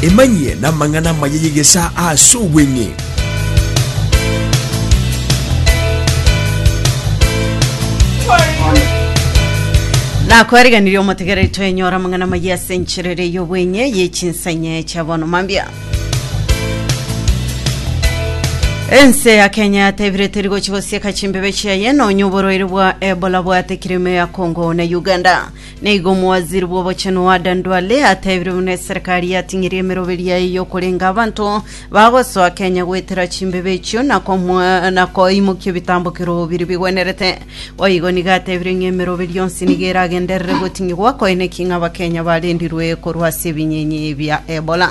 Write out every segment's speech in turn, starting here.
Emanyie namang'ana amaya y'egesaa aase obweng'e. nakwariganirie omotegereri twenyora amang'ana amaya ase enchera ere y'obwenye y'echinsa inye chia bono mambia ense ya kenya yatebire teri gochi gosieka chimbebe chiaye nonya oborwaire bwa ebola bwate kirime ya congo na uganda Naigo omowaziri bw'obochenu Adan Duale atebirie buna eserekari yating'irie emeroberi yaye y'okorenga abanto bagosoa Kenya goetera chimbebe echio na komwa- na koimokia ebitambokero biria bigwenerete. Boigo nigo atebirie ng'a emeroberi yonsi nigo eragenderere goting'igwa koine ki ng'a Abakenya barendirwe korwa ase ebinyenyi bia Ebola.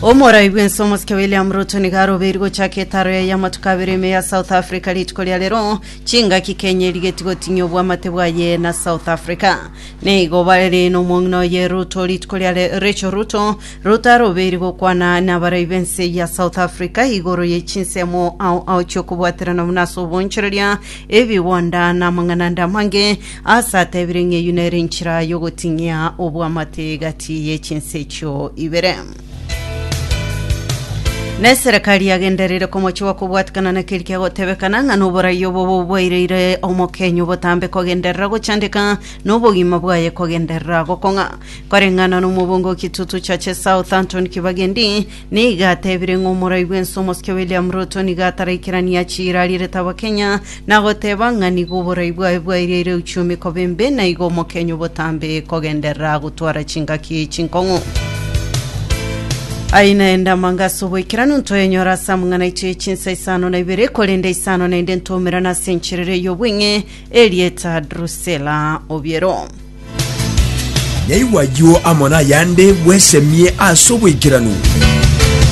Omorai bw'ense omosike William Ruto nigo arobeiri gochaka etaro yaye amatuko abere ime ya South Africa rituko ria rero Chingaki Kenya erigetie gotinyia obwamate bwaye na South Africa. Nigo bare nomong'ina oye Ruto rituko ria Re- Rachel Ruto. Ruto arobeire gokwana nabarai b'ense ya South Africa igoro ye chinsemo ao ao chi'okobwaterana buna ase obonchoreria, ebigwanda na amang'ana ande amange, ase atebire ng'a eyio nere enchera y'ogotinyia obwamate egati ye chinse echio ibere. Na eserekari yagendereire komochiwa kobwatikana na keri kegotebekana ng'a noborai obo boboireire omokenya obotambe kogenderera gochandeka na obogima bwaye kogenderera gokong'a. Koreng'ana nomobunga o Kitutu Churches South Anthony Kibagendi nigo atebire ng'a omorai bw'ense omosike William Ruto nigo ataraikerania chira arierete abakenya na goteba ng'a nigo oborai bwaye bwairiaire gochia emikoba embe, na igo omokenyu obotambe kogenderera gotwara chingaki chinkong'u. Aye naende amanga ase oboikeranu ntoyenyora ase amang'ana aito ye chinsa isano na ibere, korende isano naende ntoumerana ase encherero ey'obweng'e, erieta Drusela obiero. Yaigwa ayio amo nayande, bwesemie ase oboikeranu.